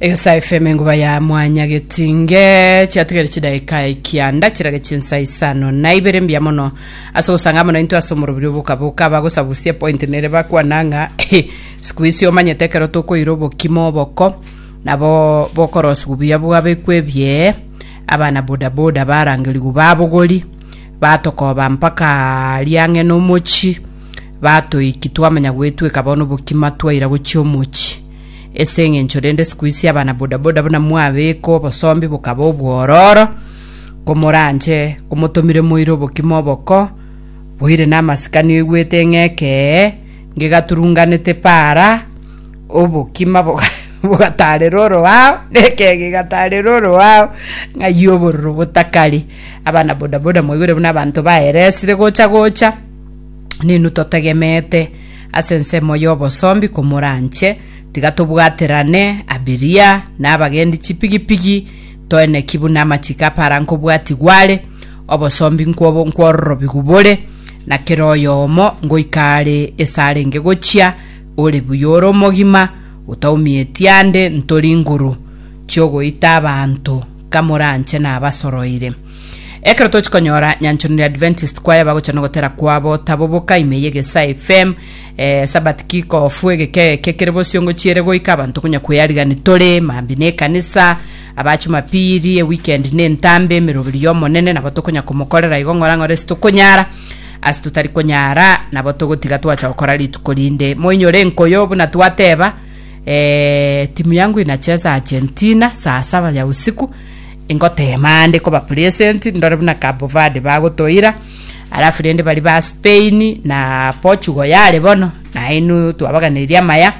Egesa FM enguba ya mwanya getinge chiatigere chidaika ekianda chirage chinsa isano na ibere mbuya mono ase ogosanga amo nainto ase omorobiri obokaboka abagosabusia point nere bakwana ng'a siku isi omanyete ekero tokoira obokima oboko nabo bokorosigu buya bwabekwa ebie abana bodaboda barangerigu babogori batokoba mpaka riang'ena omochi batoiki twamanya goetweka bono obokima twaira gochia omochi Ase engencho rende sikuisi abana bodaboda buna mwabeka obosombi bokaba obwororo, komoranche komotomire moire obokima oboko, boire namasikani oigwete ng'a ekee ngegaturunganete para, obokima boga- bogatarera oroao, na ekee gegatarera oroao, ng'ai obororo botakari. Abana bodaboda mwaigwere buna abanto baeresire gocha gocha. Ninu totegemeete ase ensemo y'obosombi komoranche, tiga tobwaterane abiria na abagendi chipigipigi, toeneki buna amachiko apara nkobwatigwa are, obosombi nkwobo nkwororobigu bore, na kera oyomo ngoika are ase arenge gochia, ore buya ore omogima, otaumieti ande ntori nguru chi'ogoita abanto, kamoranche nabasoroire. Ekero tochi konyora nyanchorano ya Adventist kwaya bagocha nogotera kwabo tabo boka ime y'egesae FM eh, Sabbath kick off egeke eke kere bosio ngochiere goika abanto konya kweyarigani tore mambi ne ekanisa aba chumapiri eweekend ne entambe emeroberi y'omonene nabo tokonya komokorera igo ng'ora ng'ora ase tokonyara ase totari konyara nabo togotiga twacha gokora rituko rinde moinyore enkoyo buna twateba eh, timu yangu inacheza Argentina saa saba ya usiku Ingoteema aande koba present ndore buna Cabo Verde bagotoira, alafu rende bari ba Spain na Portugal yare bono, nainwe twabaganeirie amaya.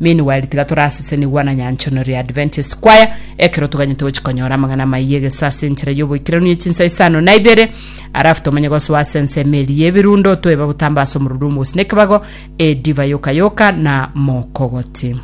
Meanwhile tiga torasesenie gwana nyanchonero ya Adventist Choir ekero toganyete gochia konyora amang'ana amaiya egesa ase enchera y'oboikeranu ye chinsa isano na ibere, alafu tomenye gosoa ase ensemo eria y'ebirundo toeba botamba ase omoruru omogusu na ekebago, edivai yoka yoka na mokogoti.